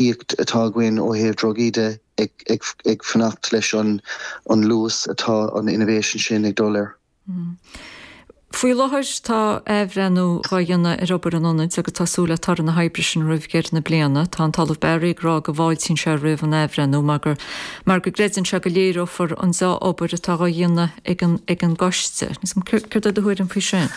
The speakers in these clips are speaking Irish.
íocaíocht atá againn ó thaobh drugaí de ag fanacht leis an luas atá an innovation sin ag dul air. Faoi láthair tá athbhreithniú dhá dhéanamh ar obair an Ionaid agus tá súil le toradh na hoibre sin roimh dheireadh na bliana. Tá an tOllamh Barry ag rá go bhfáiltíonn seo roimh an athbhreithniú mar gur mar go gcreideann seo go léireofar an deá-obair atá dhá dhéanamh ag an gCoiste. Céard é do thuairim faoi sin?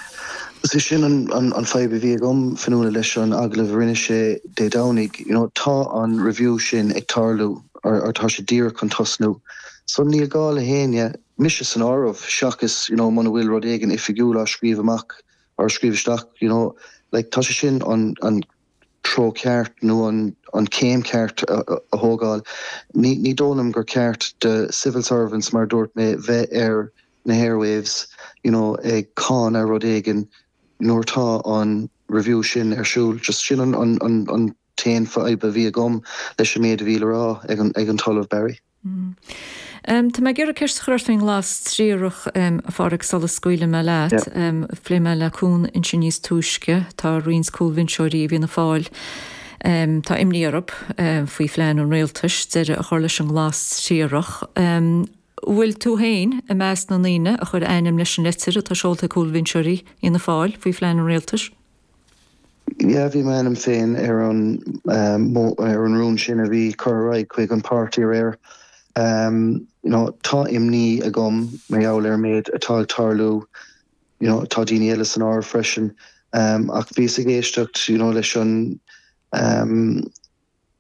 Is é sin an fadhb a bhí agam, Fionnuala, leis an agallamh a rinne sé Dé Domhnaigh. You know, tá an review sin ag tarlú, or tá sé díreach chun tosnú. So níl gá le héinne, mise san áireamh, seachas, you know, muna bhfuil rud éigin oifigiúil á scríobh amach, or á scríobh isteach, you know, like, tá sé sin an, an, treo ceart nó an céim ceart a thógáil. Ní dóigh liom gur ceart do civil servants, mar a dúirt mé, bheith ar na hairwaves you know ag cáineadh rud éigin nuair tá an review sin ar siúl. Just sin an t-aon fhadhb a bhí agam leis an méid a bhí le rá ag an tOllamh Barry. Tá mé ag iarraidh ceist a chur ort faoin nglas triarach, a Phádraig, sula scaoileann mé leat. Phléigh mé le Cuán ansin níos túisce, tá roinnt cúlbhinseoirí i bhFianna Fáil, tá imní orthu faoi phlean an rialtais deireadh a chur leis an nglas triarach. An bhfuil tú féin i measc na ndaoine a chuir a ainm leis an litir atá seolta ag cúlbhinseoirí Fhianna Fáil faoi phlean an rialtais? Yeah, bhí m'ainm féin ar, ar an rún sin a bhí curtha ar aghaidh chuig an páirtí aréir. You know, tá imní agam mar gheall ar an méid atá ag tarlú. You know, tá daoine eile san áireamh freisin. Ach bhíos ag éisteacht, you know, leis an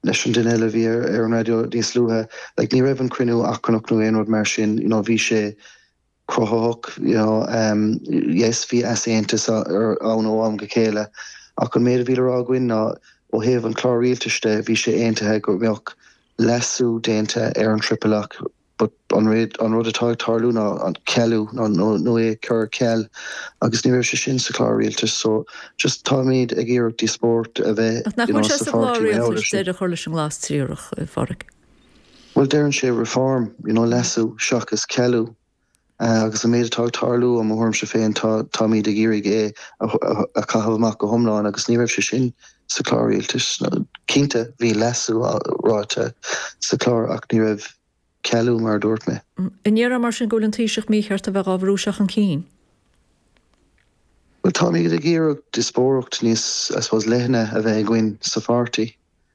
leis an duine eile a bhí ar an raidió níos luaithe. Like, ní raibh an cruinniú achrannach nó aon rud mar sin. You know, bhí sé. cruthaitheach you know em yes bhí easaontas ann ó am go chéile ach an méid a bhí le rá againn ná ó thaobh an Chlár Rialtais de bhí sé aontaithe go mbeadh leasú déanta ar an triple lock but an réad an rud atá ag tarlú ná an cealú ná nó nó é cur ar ceal agus ní raibh sé sin sa Chlár Rialtais so just táimid ag iarraidh díospóireacht a bheith Ach nach you bhfuil know sé sa sa Chlár pháirtí mar gheall ar Rialtais sin. deireadh a chur leis an nglas triarach, a Pháraic? Bhuel, deireann sé reform, you know, leasú seachas cealú. Agus an méid atá ag tarlú, i mo thuairimse féin, tá, táimid ag iarraidh é a chaitheamh amach go hiomlán agus ní raibh sé sin sa chlár rialtais. Cinnte, bhí leasú ráite sa chlár ach ní raibh cealú mar a dúirt mé. An ndéarfá mar sin go bhfuil an Taoiseach mícheart a bheith dhá bhrú seo chun cinn? Bhuel, táimid ag iarraidh díospóireacht níos, I suppose, leithne a bheith againn sa pháirtí.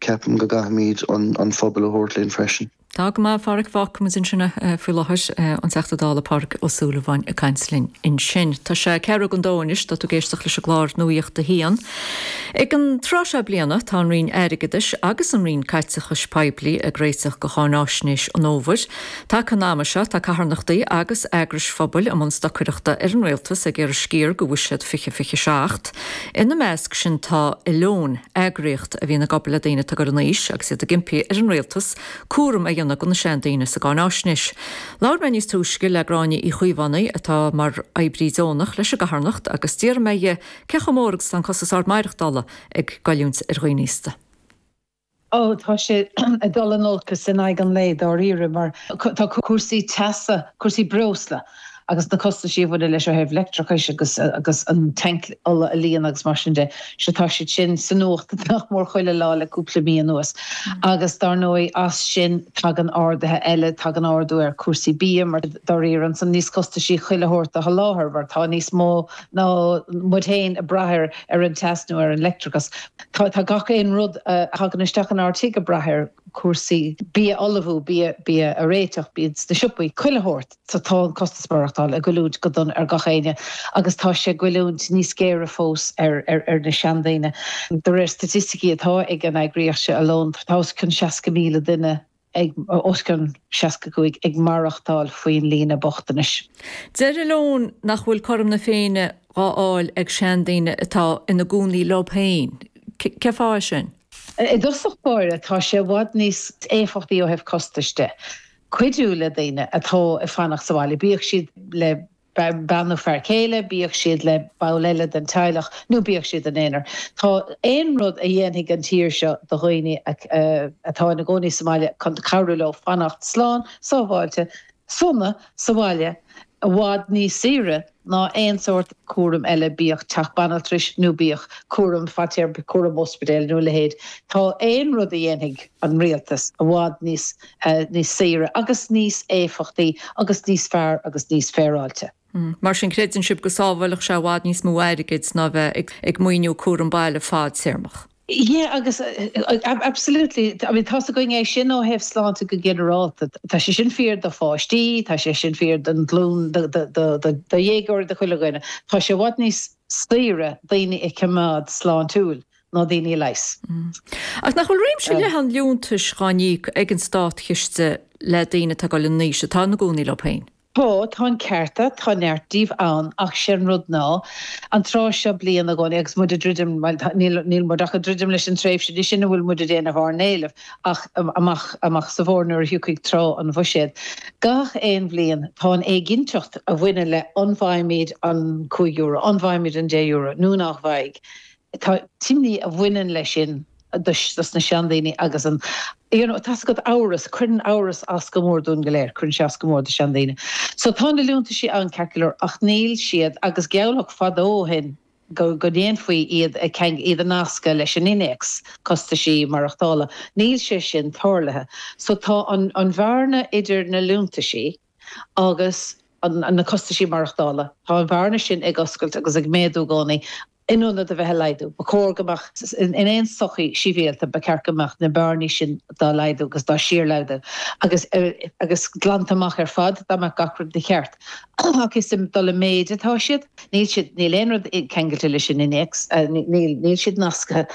Ceapaim go gcaithfimíd an pobal a thabhairt linn freisin. Tá go maith, a Phádraig, fágfaidh muid ansin faoi láthair, an Teachta Dála Pádraig Ó Súilleabháin ag caint linn ansin. Tá sé ceathrú chun a dó anois, tá tú ag éisteacht leis an gclár Nuacht a hAon. Ag an tráth seo bliana tá an Roinn Airgeadais agus an Roinn Caiteachais Poiblí ag réiteach do cháináisnéis an fhómhair. Taca an ama seo tá carthanachtaí agus eagrais phobail i mbun stocaireachta ar an Rialtas ag iarraidh sciar de Bhuiséad 2027, Ina measc sin tá Alone, eagraíocht a bhíonns ag obair le daoine atá ag dul in aois agus iad ag impí ar an Rialtas cúram a dhéanamh de na seandaoine sa gcáináisnéis. Labhair mé níos túisce le Gráinne Uí Chaomhánaigh atá mar oibrí deonach leis an gcarthanacht agus d'iarr mé dhi cé chomh mór agus atá an costas ard maireachtála ag goilliúint ar dhaoine aosta. Ó, tá sé ag dul in olcas in aghaidh an lae, dáiríre, mar tá cúrsaí teasa, cúrsaí breosla agus na costaisí a bhaineann leis ó thaobh leictreachais agus agus an tanc ola a líonadh agus mar sin de, sea, tá siad sin sa nuacht nach mór chuile lá le cúpla mí anuas. Agus dár ndóigh, as sin tagann arduithe eile, tagann ardú ar chúrsaí bia, mar dáiríre, tá sé níos costaisí chuile shórt a sholáthar mar tá níos mó ná muid fhéin ag braith ar ar an teas nó ar an leictreachas. Tá gach aon rud a thagann isteach in ár tigh ag brath air, cúrsaí bia a ullmhú, bia a réiteach, bia sna siopaí, chuile shórt. So tá an costas maireachtála ag goilliúint go dona ar gach éinne agus tá sé ag goilliúint níos géire fós ar na seandaoine. De réir staitisticí atá ag an eagraíocht seo Alone, tá os cionn 60,000 duine ag os cionn 65 ag maireachtáil faoin líne bochtanais. Deir Alone nach bhfuil cothrom na Féinne dhá fháil ag seandaoine atá ina gcónaí leob féin. Cén fáth é sin? I dtosach báire tá sé i bhfad níos éifeachtaí ó thaobh costais de, cuidiú le daoine atá ag fanacht sa bhaile, bíodh siad le bean nó fear céile, bíodh siad le ball eile den teaghlach nó bíodh siad in aonar, tá aon rud a dhéanfaidh an tír seo do dhaoine atá ina gcónaí sa mbaile chun cabhrú leo fanacht slán sábháilte sona sa bhaile i bhfad níos saoire ná aon sórt cúram eile, bíodh teach banaltrais nó bíodh cúram fadtéarma, cúram óspidéil nó a leithéid, tá aon rud a dhéanfaidh an Rialtas i bhfad níos. níos saoire agus níos éifeachtaí agus níos fearr agus níos féaráilte. Mar sin, creideann sibh go sábhálfadh sé i bhfad níos mó airgid ná bheith ag maoiniú cúram baile fadtéarmach? Yeah agus absolutely. I mean tá's againn é sin ó thaobh sláinte go ginearálta. Tá sé sin fíor do pháistí, tá sé sin fíor don ghlún, do dhéagóirí, do chuile dhuine. Tá sé i bhfad níos saoire daoine a choimeád sláintiúil ná daoine leighis. Ach nach bhfuil réimse leathan liúntais dhá n-íoc ag an Státchiste le daoine atá ag dul in aois, atá ina gcónaí leo féin? Tá, tá an ceart a't, tá neart díobh ann, ach sé an rud ná, an tráth seo bliain i gcónaí agus muid ag druidim, bhuel tá, níl, níl muid ach ag druidim leis an tréimhse di sin a bhfuil muid ag déanamh ár n-éileamh ach amach, amach sa bhfómhar nuair a thiocfaidh tráth an Bhuiséad. Gach aon bhliain tá an éiginnteacht a bhaineann le an bhfaighimid an cúig euro, an bhfaighimid an deich euro nó nach bhfaighidh. tá an imní a bhaineann le sin do sna seandaoine agus an you know tá's agat amhras cuireann amhras as go mór dúinn go léir cuireann sé as go mór do seandaoine so tá na liúntaisí ann ceart go leor ach níl siad agus gealladh fadó ó shin go go ndéanfaí iad a ceangal iad a nascadh leis an innéacs costaisí maireachtála níl sé sin tarlaithe so tá an an bhearna idir na liúntaisí a agus na costaisí maireachtála. Tá an bhearna sin ag oscailt agus ag méadú i gcónaí in ionad a bheith a laghdú. Ba chóir go mbeadh, in aon sochaí shibhialta, ba cheart go mbeadh na bearnaí sin dá laghdú agus dá síorlaghdú agus agus glanta amach ar fad dá mbeadh gach rud ina cheart. Ach is ag dul i méid atá siad. Níl siad, níl aon rud ceangailte leis an innéacs, níl, níl siad nasctha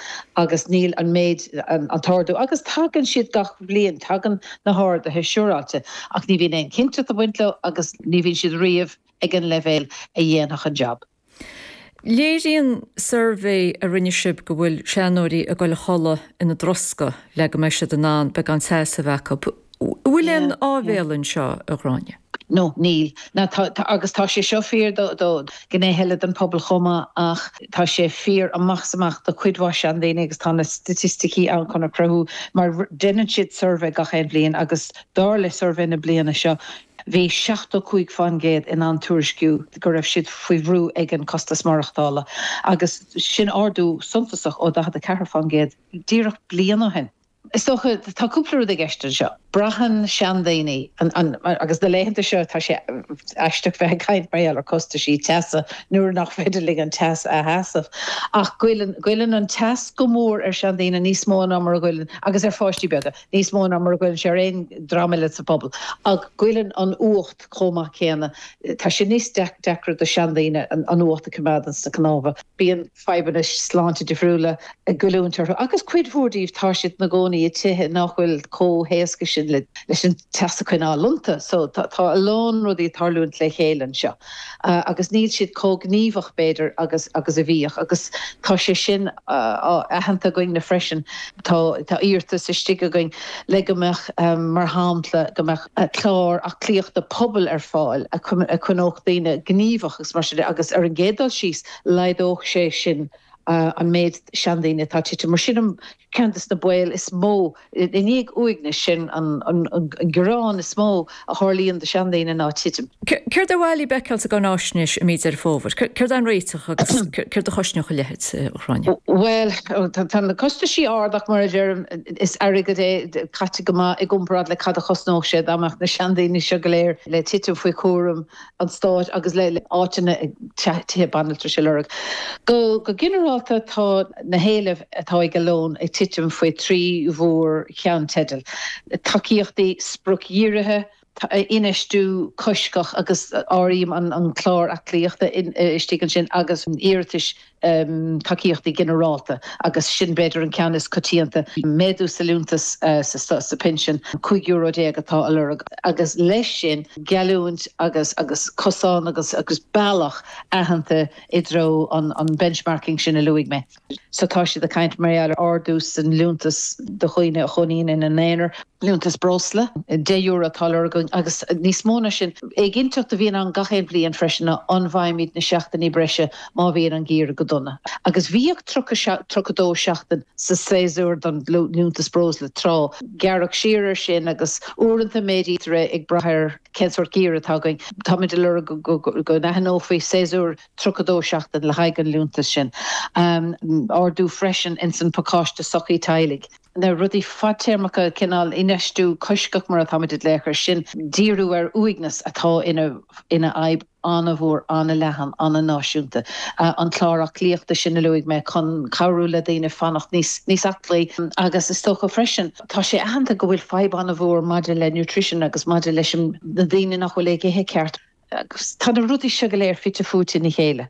agus níl an méid, an t-ardú, agus tagann siad gach bliain, tagann na harduithe siúráilte ach ní bhíonn aon chinnteacht ag baint leo agus ní bhíonn siad riamh ag an leibhéal a dhéanfadh an jab. Léiríonn suirbhé a rinne sib go bhfuil seanóirí ag goil a chodladh ina dtroscadh le go mbeidh siad in ann, beidh an seasamh acu. An bhfuil aon áibhéal anseo, a Ghráinne? No, níl. Ná tá, tá, agus tá sé seo fíor do, do, gnéithe eile den pobal chomh maith ach tá sé fíor amach is amach do cuid mhaith seandaoine agus tá na staitisticí ann chun a chruthú mar deineann siad suirbhé gach aon bhliain agus dar le suirbhé na bliana seo bhí seachtó cúig fán gcéad in ann tuairisciú go raibh siad faoi bhrú ag an costas maireachtála agus sin ardú suntasach ó daichead a ceathair fán gcéad díreach bliain ó shin. Is dócha, tá cúpla rud i gceist anseo. Braitheann seandaoine, agus na laethanta seo tá sé aisteach bheith ag caint mar gheall ar costaisí teasa nuair nach féidir linn an teas a sheasamh, ach goilleann, goilleann an teas go mór ar seandaoine níos mó ná mar a ghoilleann, agus ar pháistí beaga, níos mó ná mar a ghoilleann sé ar aon dream eile sa phobal. Ach goilleann an fhuacht chomh maith céanna. Tá sé níos deacra do seandaoine an fhuacht a choimeád ó sna cnámha. Bíonn fadhbanna sláinte difriúla ag goilliúint orthu agus cuid mhór díobh tá siad ina gcónaí i tithe nach bhfuil chomh héasca sin leis an teas a choinneáil iontu. So tá a lán rudaí ag tarlúint le chéile anseo agus níl siad chomh gníomhach b'fhéidir agus a bhíodh agus tá sé sin aitheanta againn-na freisin. Tá iarratas istigh againn le go mbeadh mar shampla go mbeadh clár aclaíochta pobail ar fáil a choinneodh daoine gníomhach agus mar sin de agus ar an gcéad dul síos, Laghdódh sé sin an méid seandaoine atá ag titim. Mar sin ceann de na baol is mó, i ndiaidh uaignis, sin an gearán is mó a tharlaíonn do sheandaoine ná titim. Céard ba mhaith libh a fheiceáil sa gCáináisnéis i mí Dheireadh Fómhair? Céard é an réiteach agus céard a chosnódh a leithéid, a Ghráinne? Bhuel, tá na costaisí ard ach mar a deirim, is airgead é caite go maith i gcomparáid le cad a chosnódh sé dá mbeadh na seandaoine seo go léir le titim faoi chúram an stáit agus le háiteanna, tithe banaltrais a lorg. Go ginearálta tá na héilimh atá ag Alone ag titim faoi thrí mhór cheannteideal, tacaíochtaí spriocdhírithe, infheistiú coisctheach agus áirím an clár aclaíochta istigh ansin agus iarratais tacaíochtaí ginearálta agus sin b'fhéidir an ceann is coitianta. Méadú sa liúntas sa phinsean, cúig euro déag atá a lorg. Agus leis sin geallúint agus agus cosán agus agus bealach aitheanta i dtreo an an benchmarking sin a luaigh mé. So tá siad ag caint mar gheall ar ardú sa liúntas do dhaoine a chónaíonn ina n-aonar. Liúntas breosla, deich euro atá a lorg againn agus níos mó ná sin. Éiginnteacht a bhíonn ann gach aon bhliain freisin ná an bhfaighimid na seachtainí breise má bhíonn an geimhreadh go dona. Agus bhíodh tríocha dó seachtain sa séasúr don liúntas breosla tráth. Gearradh siar ar sin agus uaireanta méadaítear é ag brath ar cén sórt geimhreadh atá againn. Táimid ag lorg go n-aithneofaí séasúr tríocha dó seachtain le haghaidh an liúntas sin. Ardú freisin ins an pacáiste sochair teaghlaigh. na rudaí fadtéarmacha, cineál infheistiú coisctheach mar atáimid ag glaoch air sin, díriú ar uaigneas atá ina fhadhb an-mhór, an-leathan, an-náisiúnta, an clár aclaíochta sin a luaigh mé chun cabhrú le daoine fanacht níos aclaí agus is dócha freisin, tá sé aitheanta go bhfuil fadhb an-mhór maidir le nutrition agus maidir leis na daoine nach bhfuil ag ithe ceart agus tá na rudaí seo go léir fite fuaite ina chéile.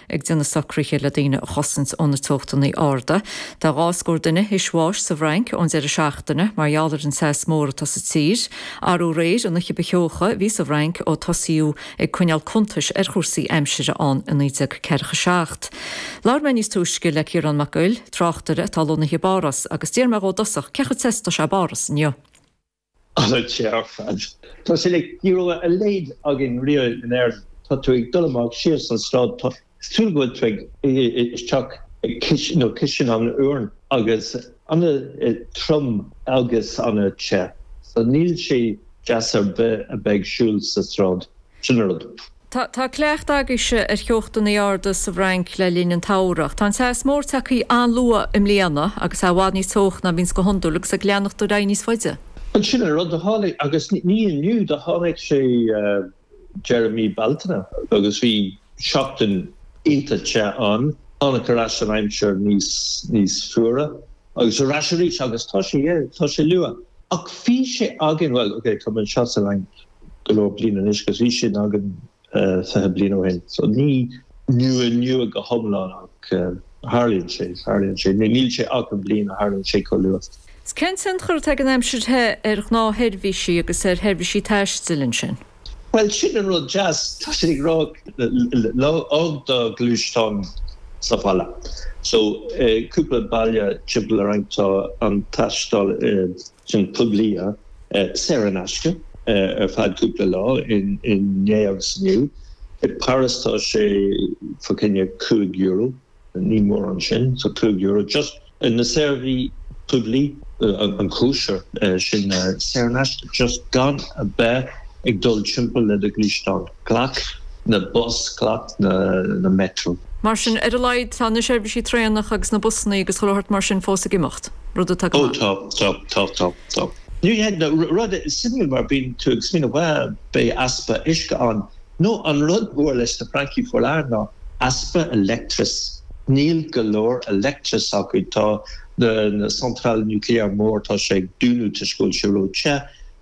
ag déanamh socruithe le daoine a chosaint ó na teochtanaí arda. Tá dhá scór duine tar éis bháis sa bhFrainc ón deireadh seachtaine mar gheall ar an teas mór atá sa tír. Aréir an oíche ba theocha a bhí sa bhFrainc ó tosaíodh ag coinneáil cuntais ar chúrsaí aimsire ann i 1947. Labhair mé níos túisce le Ciarán Mac Guill, tráchtaire atá lonnaithe i bPáras, agus d'iarr mé dhó i dtosach cé chomh te is atá sé i bPáras inniu. Ana the ar fad. Níl díreach a leithéid againn riamh in Éirinn. Tá tú ag dul amach síos an tsráid, tá sé cosúil go bhfuil tú ag dul isteach i gcistin nó cistin an aráin agus ana trom agus ana te. So níl sé deas ar bith a bheith ag siúl sa sráid. Sin rud. Tá tá cleachtadh agaibhse ar theochtannaí arda sa bhFrainc le linn an tsamhraidh. Tá an teas mór tagthaí an-luath i mbliana agus é i bhfad níos teocha ná bhíonns go hiondúil agus ag leanacht ar aghaidh níos faide. An sin an rud a tháinig? Agus ní inniu, tháinig sé deireadh mí Bealtaine agus bhí seachtain iontach te ann. Tháinig ar ais an aimsir níos níos fuara agus ar ais arís agus tá sé tá sé luath. Ach bhí sé againn, bhuel, okay, tá mé anseo sa Fhrainc. go leor bliain anois agus bhí sin againn fiche bliain ó shin. So ní nua nua go hiomlán ach tharlaíonn sé, tharlaíonn sé. Níl sé achan bhliain a tharlaíonn sé chomh luath. Is cén tionchar atá ag an aimsir the ar ghnáthsheirbhísí agus ar sheirbhísí taistil ansin? Bhuel sin an rud deas, tá siad ag rá fág do ghluaisteán sa bhaile. So cúpla baile timpeall orainn tá an taisteal. Sin poiblí saor in aisce ar feadh cúpla lá inné agus inniu. I bPáras tá sé fá choinne cúig euro. Ní mórán sin fá cúig euro. Just na seirbhísí poiblí, an cóisir, sin saor in aisce just gan a beith ag dul timpeall le do ghluaisteán. Glac na bus, glac na metro. Mar sin, ar a laghad tá na seirbhísí traenach agus na busannaí agus chuile shórt mar sin fós ag imeacht, rud atá go maith. Oh tá, tá, tá, tá. Ní hé, nó rud suimiúil mar bíonn tú ag smaoineamh bhuel beidh easpa uisce ann, nó an rud mór leis na Francaigh faoi láthair ná easpa leictreas, níl go leor leictreas acu, tá na centrales nucléaires mór tá sé ag dúnadh toisc go bhfuil sé ró-the,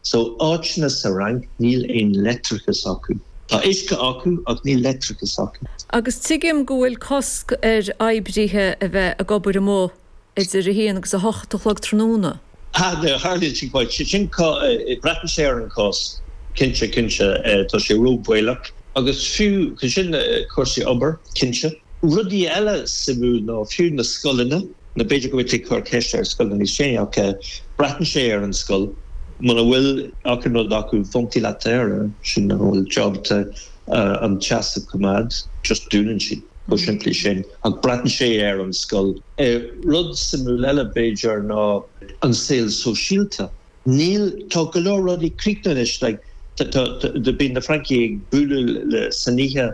So áiteanna sa Fhrainc níl aon leictreachas acu. Tá uisce acu ach níl leictreachas acu. Agus tuigim go bhfuil cosc ar oibrithe a bheith ag obair amuigh idir a haon agus a hocht a chlog tráthnóna. Ha, no, hardly too much. Sé sin braitheann sé ar an gcás. Cinnte, cinnte, tá sé ró-baolach. Agus fiú sin, cúrsaí obair, cinnte. Rudaí eile suimiúil ná fiú na scoileanna. Nó b'fhéidir go bhfuil tú ag cur ceiste ar scoileanna níos déanaí ach braitheann sé ar an scoil muna bhfuil achan rud acu fá choinne ventilateur sin an bhfuil jab de an teas a choimeád just dúnann siad chomh simplí sin ach braitheann sé ar an scoil. Rud suimiúil eile b'fhéidir ná an saol sóisialta. Níl, tá go leor rudaí críochnaithe anois like tá, tá, tá, bíonn na Francaigh ag bualadh le, san oíche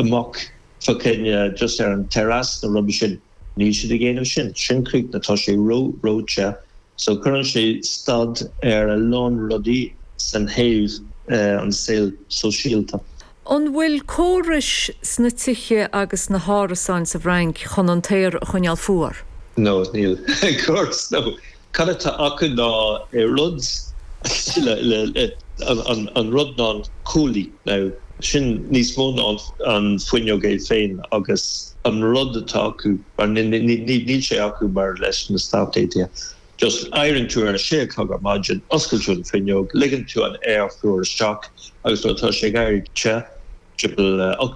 amach fá choinne just ar an terrace nó rud mar sin. Níl siad ag déanamh sin. Sin críochnaithe. Tá sé ró-róite. So cuireann sé stad ar a lán rudaí ó thaobh an saol sóisialta. An bhfuil córais sna tithe agus sna hárasáin sa bhFrainc chun an t-aer a choinneáil fuar? No, níl. Córas, no. Cad atá acu ná rud a thuilleadh le an rud ná an cuaillí, nó sin níos mó ná an fuinneog é féin agus an rud atá acu, mar níl sé acu mar leis na Stáit Aontaithe just éiríonn tú ar a sé a chlog ar maidin, osclaíonn tú an fuinneog, ligeann tú an t-aer fuar isteach agus nuair atá sé ag éirí te, timpeall a.